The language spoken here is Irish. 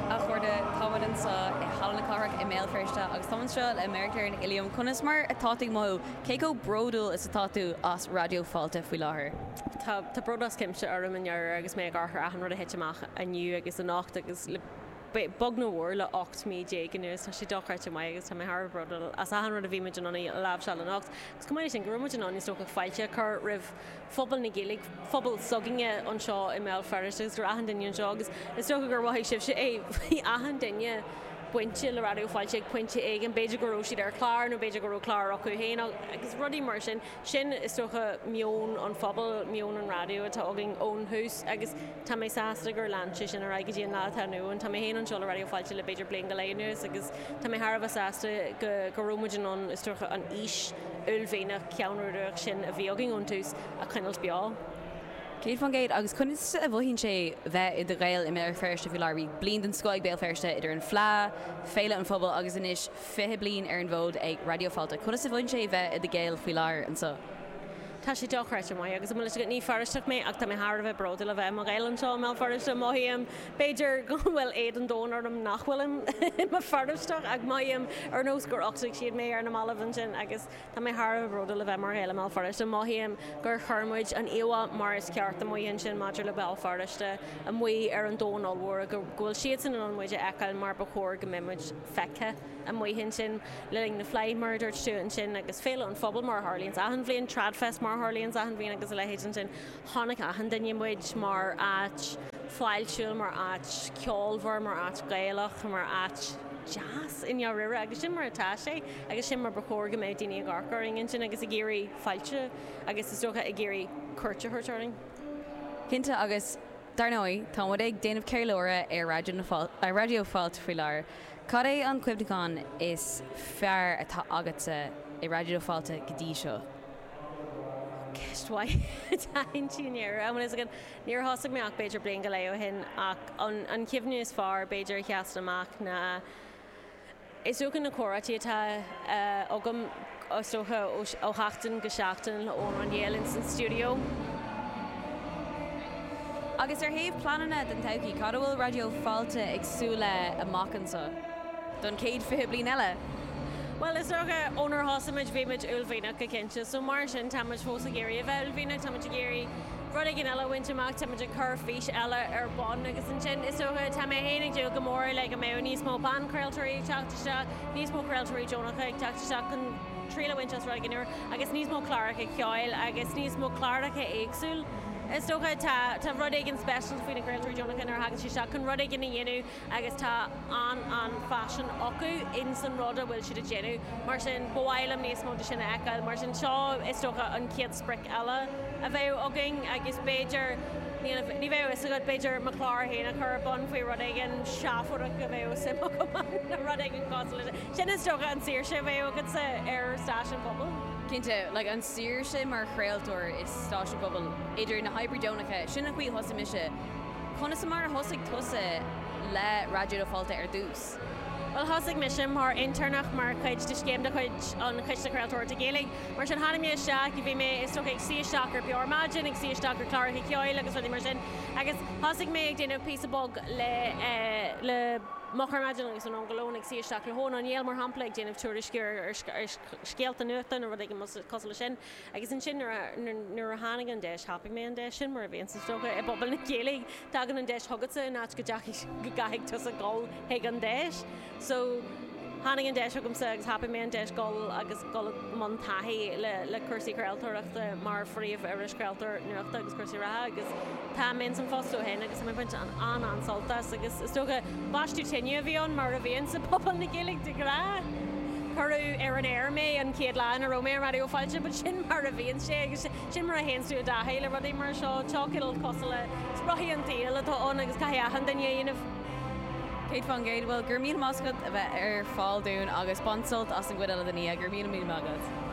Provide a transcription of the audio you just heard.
A chairde, táimid anseo i Halla na Cathrach i mBéal Feirste agus táim anseo le Máire Clár Nic Uilliam. Conas mar atá tú ag mothú? Cé chomh bródúil is atá tú as Raidió Fáilte faoi láthair? Tá bród as cuimse orm i ndáiríre agus mé ag amharc ar achan rud a thit amach inniu agus anocht agus le. beag nó mór le 18 mí anuas, tá sé dochreidte maith agus tá mé thar a bheith bródúil as achan rud a bhí muid in ann a láimhseáil anocht. Agus chomh maith le sin, go raibh muid in ann, is dócha, fáilte a chur roimh phobal na Gaeilge, phobal s'againne anseo i mBéal Feirste agus roimh achan duine anseo agus is dócha gur mhothaigh sibhse é, bhí achan duine bainte le Raidió Fáilte ag pointe éigin, b'fhéidir go raibh siad ar chlár nó b'fhéidir go raibh clár acu féin agus rudaí mar sin. Sin, is dócha, meon an phobail, meon an raidió atá againn ón thús agus tá mé sásta gur lean sé sin ar aghaidh go dtí an lá atá inniu ann. Tá mé féin anseo le Raidió Fáilte le b'fhéidir bliain go leith anuas agus tá mé thar a bheith sásta go raibh muid in ann, is dócha, an fhís uaillmhianach, cheannródaíoch sin a bhí againn ón tús a choinneáil beo. 100% agus conas a mhothaíonn sé bheith i do Ghael i mBéal Feirste faoi láthair? Bhí bliain den scoth ag Béal Feirste idir an Fleadh, Féile an Phobail agus anois 20 bliain ar an bhfód ag Raidió Fáilte. Conas a bhraitheann sé a bheith i do Ghael faoi láthair anseo? Tá sé dochreidte maith agus, an bhfuil a fhios agat, ní Feirsteach mé ach tá mé thar a bheith bródúil a bheith i mo Ghael anseo i mBéal Feirste. Mothaím, b'fhéidir, go bhfuil éad an domhain orm nach bhfuilim i mo Fheirsteach ach mothaím ar nós gur uchtaigh siad mé ar na mallaibh ansin agus tá mé thar a bheith bródúil a bheith mar Ghael i mBéal Feirste. Mothaím gur chuir muid an íomhá mar is ceart amuigh ansin maidir le Béal Feirste amuigh ar an domhan ollmhór go bhfuil siadsan in ann muid a fheiceáil mar ba chóir go mbeimid. feicthe amuigh ansin le linn na Fleidhe mar a dúirt tú ansin agus Féile an Phobail mar a tharlaíonns achan bhliain, Tradfest mar a tharlaíonns achan bhliain agus a leithéid ansin. Chonaic achan duine muid mar áit fáiltiúil, mar áit cheolmhar, mar áit Ghaelach, mar áit deas i ndáiríre agus sin mar atá sé agus sin mar ba chóir go mbeadh daoine ag amharc orainn ansin agus ag iarraidh fáilte agus is dócha ag iarraidh cuairt a thabhairt orainn. Cinnte agus. Dar ndóigh, tá muid ag déanamh ceiliúradh ar Raidió Raidió Fáilte faoi láthair. Cad é an cuimhneachán is fearr atá agatsa i Raidió Fáilte go dtí seo? Ó, ceist mhaith. Dáiríre ansin i ndáiríre an bhfuil a fhios agam. Níor thosaigh mé ach b'fhéidir bliain go leith ó shin ach an chuimhne is fearr b'fhéidir a sheasann amach ná, Is dócha na comhráití atá agam is dócha ó sheachtain go seachtain le Eoin Ó Néill ins an stiúideo. Agus ar thaobh pleananna don todhchaí, cad a bhfuil Raidió Fáilte ag súil leis amach anso, don chéad fiche bliain eile? Bhuel, is dócha, ónar thosaigh muid, bhí muid uaillmhianach go cinnte, so mar sin, tá muid fós ag iarraidh a bheith uaillmhianach, tá muid ag iarraidh, rud éigin eile a bhaint amach, táimid ag cur fís eile ar bun agus ansin is dócha, tá mé féin ag dúil go mór le go mbeadh níos mó banchraoltóirí ag teacht isteach, níos mó craoltóirí deonacha ag teacht isteach chun triail a bhaint as rud éigin úr agus níos mó cláracha ceoil agus níos mó cláracha éagsúil. Is dócha, tá rud éigin speisialta faoi na craoltóirí deonacha nuair a thagann sé isteach chun rud éigin a dhéanamh, agus tá an-an-phaisean acu ins an rud a bhfuil siad ag déanamh. Mar sin, ba mhaith liom níos mó de sin a fheiceáil. Mar sin, seo is dócha an chéad sprioc eile a bheadh againn agus b'fhéidir, níl, ní bheadh 'fhios agat, b'fhéidir mo chlár féin a chur ar bun faoi rud éigin seafóideach a bheadh suim agam ann nó rud éigin cosúil leis sin. Sin is dócha an saoirse a bheadh agatsa ar stáisiún pobail. Cinnte, like an saoirse mar chraoltóir i stáisiún pobail, idir na hoibrithe deonacha, sin an chaoi a thosaigh mise, Conas mar a thosaigh tusa le Raidió Fáilte ar dtús? Bhuel, thosaigh mise mar intéirneach mar chuid de scéim de chuid an Chiste Chraoltóireachta Gaeilge. Mar sin, tháinig mé isteach, bhí mé, is dócha, ag suí isteach ar Beo Ar Maidin, ag suí isteach ar chláracha ceoil agus rudaí mar sin agus thosaigh mé ag déanamh píosa beag le, le Moch Ar Maidin agus Anonn go Lón, ag suí isteach le hEoghan Ó Néill, mar shampla, ag déanamh tuairisciú ar, ar, ar scéalta nuachta nó rud éigin cosúil leis sin. Agus ansin nuair a tháinig an deis thapaigh mé an deis sin mar a bhíonns is dócha i bpobal na Gaeilge. Tagann an deis chugatsa in áit go gcaithfidh tusa dhul chuig an deis. So tháinig an deis chugamsa agus thapaigh mé an deis dhul agus dhul i mbun taithí le cúrsaí craoltóireachta mar phríomhiriseoir, craoltóir nuachta agus cúrsaí reatha agus, Tá mé ins an phost ó shin agus tá mé ag baint an-an-sult as agus is dócha baisteadh tine a bhí ann mar a bhíonn sa pobal na Gaeilge de ghnáth. Cuireadh ar an aer mé an chéad lá ina raibh mé ar Raidió Fáilte but sin mar a bhíonn sé agus sin mar a théann tú i dtaithí le rudaí mar seo. Cineál cosúil le spriochaí an tsaoil atá ann agus caithfidh achan duine a dhéanamh. 100%, bhuel go raibh míle maith agat a bheith ar fáil dúinn agus bain sult as an gcuid eile den oíche, go raibh míle míle maith agat.